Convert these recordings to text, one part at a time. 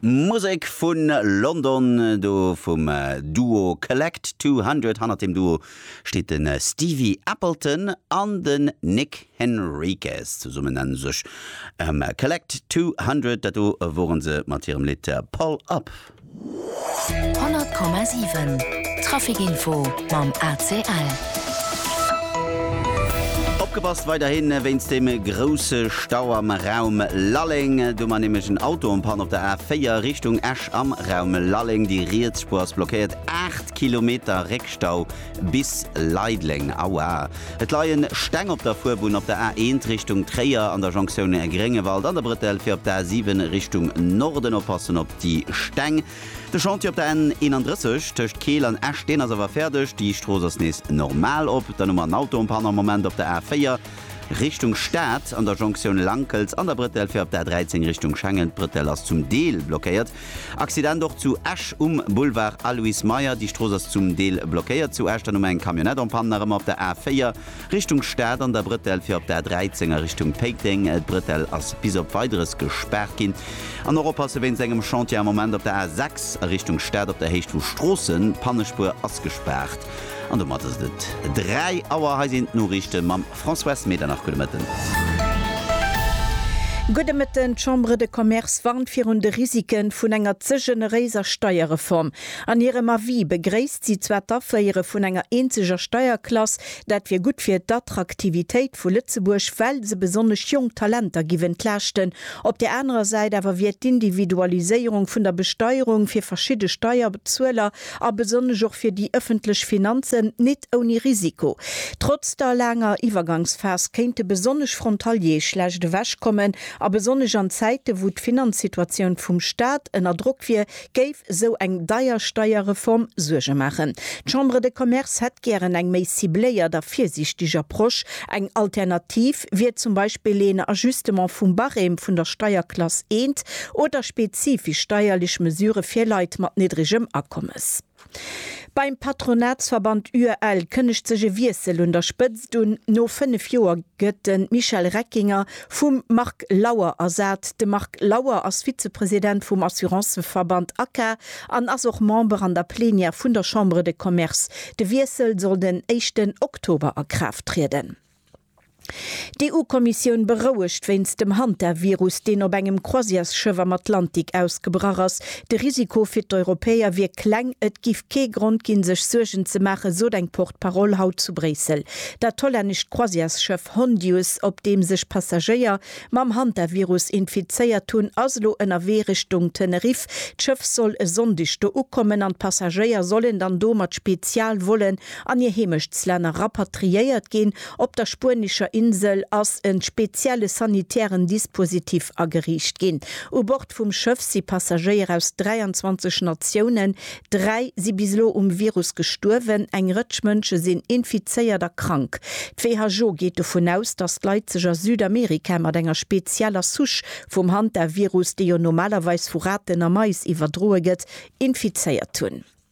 Musek vu London, do vum Duo Collect 200. Hannert dem Duo steet de Stevie Appleton an den Nick Henriques. Zesummen nennen sech Collect 200. Dat do wore se mat hirem Lidd Pull Up. 100,7 Traficinfo mam ACL. Opgepasst weiderhin wéinst dem grousse Stau am Raum Lalleng. Do war nämlech en Auto en Panne op der A4 Richtung Esch am Raum Lalleng. Déi riets Spuer ass blockéiert, 8 Kilometer Réckstau. Bis Leideleng, Aua, et leien Steng op der Fuerbunn op der A1 Richtung Tréier an der Jonktioun Gréngewald an der Brëttel fir op d'A7 Richtung Norden. Oppassen op déi Steng. De Chantier op der N31 tëscht Keel an Esch, deen ass awer fäerdeg, déi Strooss ass nees normal op. Dann hu mer en Auto en panne am Moment op der A4 Richtung Stad an der Jonktioun Lankels an der Brëttel fir op d'A13 Richtung Schengen. D'Brëttel ass zum Deel blockéiert. Accident och zu Esch um Boulevard Aloyse Meyer. Déi Strooss ass zum Deel blockéiert zu Esch. Dann hu mer eng Camionnette en Panne nach ëmmer op der A4 Richtung Stad an der Brëtell fir op d'A13 a Richtung Péiteng. D'Brëtell ass bis op Weideres gespaart ginn. An och oppasse wéinst engem Chantier am Moment op der A6 a Richtung Stad op der Héicht vu Stroossen. D'Pannespuer ass gespaart an domat ass et et 3 Auer. Hei sinn d'Noriichte mam. Françoise Medernach, Gudde Mëtten. Gudde Mëtten. D'Chambre de Commerce warnt virun de Risike vun enger ze generéiser Steierreform. An hirem Avis begréisst si zwar d'Aféiere vun enger eenzeger Steierklass, dat wier gutt fir d'Attraktivitéit vu Lëtzebuerg, well se besonnesch jonk Talenter giff entlaaschten. Op där anerer Säit awer wier d'Individualiséierung vun der Besteierung fir verschidde Steierbezueler A besonnesch och fir déi ëffentlech Finanzen nit ouni Risiko. Trotz der laanger Iwwergangsphas kéinte besonnesch Frontaliere schlecht ewech kommen. A besonnesch an Zäite wou d'Finanzsituatioun vum Staat ënner Drock wier, géif esou eng deier Steierreform Suerge maachen. D'Chambre de Commerce hätt gären eng méi cibléiert a virsiichteg Approche, eng Alternativ, Prinzip wier zum Beispill een Ajustement vum Barème vun der Steierklass I oder spezifisch steierlech Mesurë fir Leit mat niddregem Akommes. Beim Patronatsverband UEL kënnegt sech e Wiessel un der Spëtzt un, No fënnef Joer gëtt de Michel Reckinger vum Marc Lauer ersat. De Marc Lauer ass Vizepresident vum Assuranceverband ACA an ass och Member an der Plenière vun der Chambre de Commerce. De Wiessel soll den éischten Oktober a Kraaft trieden. D'EU-Kommissioun berouegt wéinst dem Hantavirus, deen op engem Croisièresschëff am Atlantik ausgebrach ass. De Risiko fir d'Europäer wier kleng, et géif kee Grond ginn, sech Suergen ze maachen, sot eng Porte-Parole haut zu Bréissel. Dat hollännescht Croisièresschëff Hondius, op deem sech Passagéier mam Hantavirus infizéiert hunn, ass elo ënnerwee Richtung Teneriff. D'Schëff soll e Sonndeg do ukommen an d'Passagéier sollen dann do mat Spezialvollen an hir Heemechtslänner rapatriéiert ginn. Op der spuenescher Insel ass e spezielle sanitären Dispositif ageriicht ginn. U Bord vum Schëff si Passagéier aus 23 Natiounen. Dräi si bis elo um Virus gestuerwen. Eng Rëtsch Mënsche sinn infizéiert a krank. D'WHO geet dovun aus, datt d'Leit sech a Südamerika mat enger spezieller Souche vum Hantavirus, déi jo normalerweis vu Raten a Mais iwwerdroe gëtt, infizéiert hunn.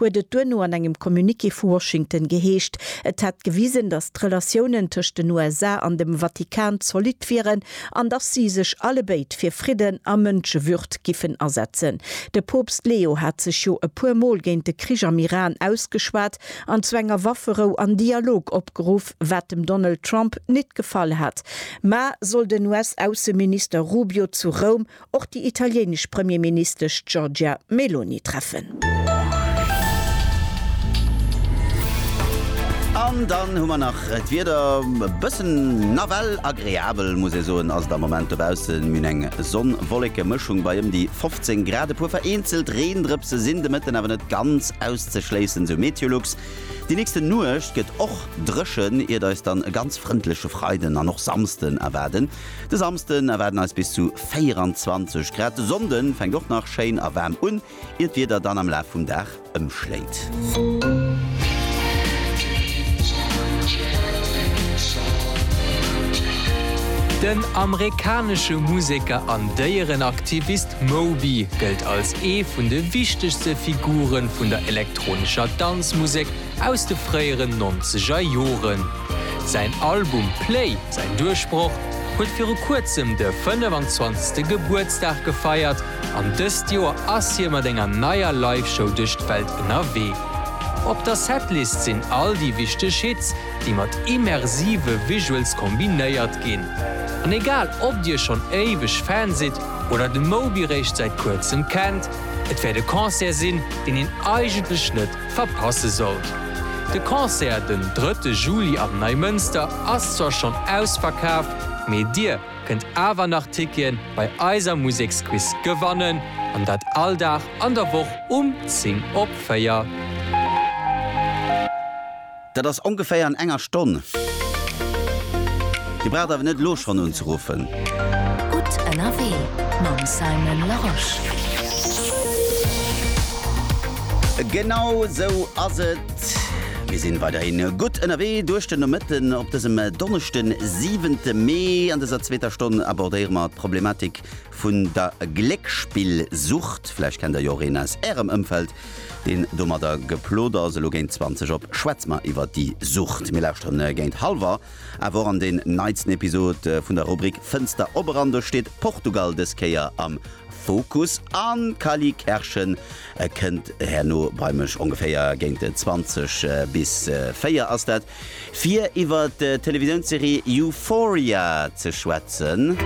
huet et duerno an engem Communiqué vu Washington geheescht, et hätt gewisen, datt d'Relatiounen tëscht den USA an dem Vatikan zolidd wieren an datt si sech allebéid fir Fridden a Mënschewürd giffen asetzen. De Poopst Leo hat sech jo e puer Mol géint de Krich am Iran ausgeschwat an zu enger Wafferou an Dialog opgeruff, wat dem Donald Trump nit gefall hat, ma soll den US-Ausseminister Rubio zu Roum och déi italienesch Premierministesch Giorgia Meloni treffen. An dann hu mer nach d'Wieder, e bëssen nawell agreabel muss ee soen ass et am Moment dobaussen. Mir hunn eng Sonn-Wolleke Mëschung bei ëm déi 15 Grad. E puer vereenzelt Reendrëpse sinn de Mëtten awer net ganz auszeschléissen, sou Meteolux. Déi nächste Nuecht gëtt och dréchen, iert eis dann e ganz frëndleche Freiden an och Samsden erwaarden. De Samsden erwaarden eis bis zu 24 Grad. De Sonnde fänkt och nach schéin a waarm un, ier d'Wieder dann am Laf vum Dag ëmschléit. Den amerikanesche Museker an Déierenaktivist Moby gëllt als ee vun de wichtegste Figure vun der elektronescher Danzmusek, Aus de fréieren nonzeger Joren. Säin Album Play, säin Duerchbroch, huet viru kuerzem de 25. Gebuertsdag gefeiert an dëst Joer ass hie mat enger neier Live-Show duerch d'Welt ënnerwee. Op der Setlist sinn all déi wichteg Hits, déi mat immersive Visuals kombinéiert ginn. An egal ob dir schonn éiweg Fan sidd oder de Moby réischt säit kuerzem kennt, et wäert e Concert sinn, deen een eigentlech net verpasse sollt. De Concert den drëtte Juli am Neimënster ass zwar schonn ausverkaaft, mee dir kënnt awer nach Ticketen bei eiser Museksquiz gewannen, an dat all Dag an der Woch um 10 op 4. Dat ass ongeféier an enger Stonn. Dir braucht awer net elo schonn unzeruffen. Gutt ënnerwee mam Simon Larosche. Genau sou ass et, mir sinn weiderhin gutt ënnerwee duerch den Nomëtten op dësem Donneschden, 7 Mee. An dëser zweeter Stonn abordéiere mer d'Problematik, vun der Gléckspillsucht. Vläicht kennt der jo och een aus Ärem Ëmfeld, deen domadder geplot ass. Elo géint 20 op schwätze mer iwwer déi Sucht. Mir lauschteren géint halwer awer och an den neitsten Episode vun der Rubrik Fënster op eran. Do steet Portugal dës Kéier am Fokus an d'Kally Kerschen kënnt herno bei mech. Ongeféier géint 20 bis 4 ass dat. Fir iwwer d'Televisiounsserie Euphoria ze schwätzen.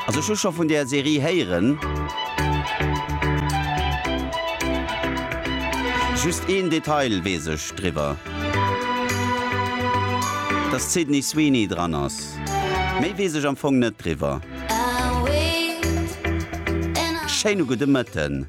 Also ech hu scho vun där Serie héieren. Just een Detail weess ech driwwer, dass d'Sydney Sweeney dran ass. Méi weess ech am Fong net driwwer. Schéine gudde Mëtten.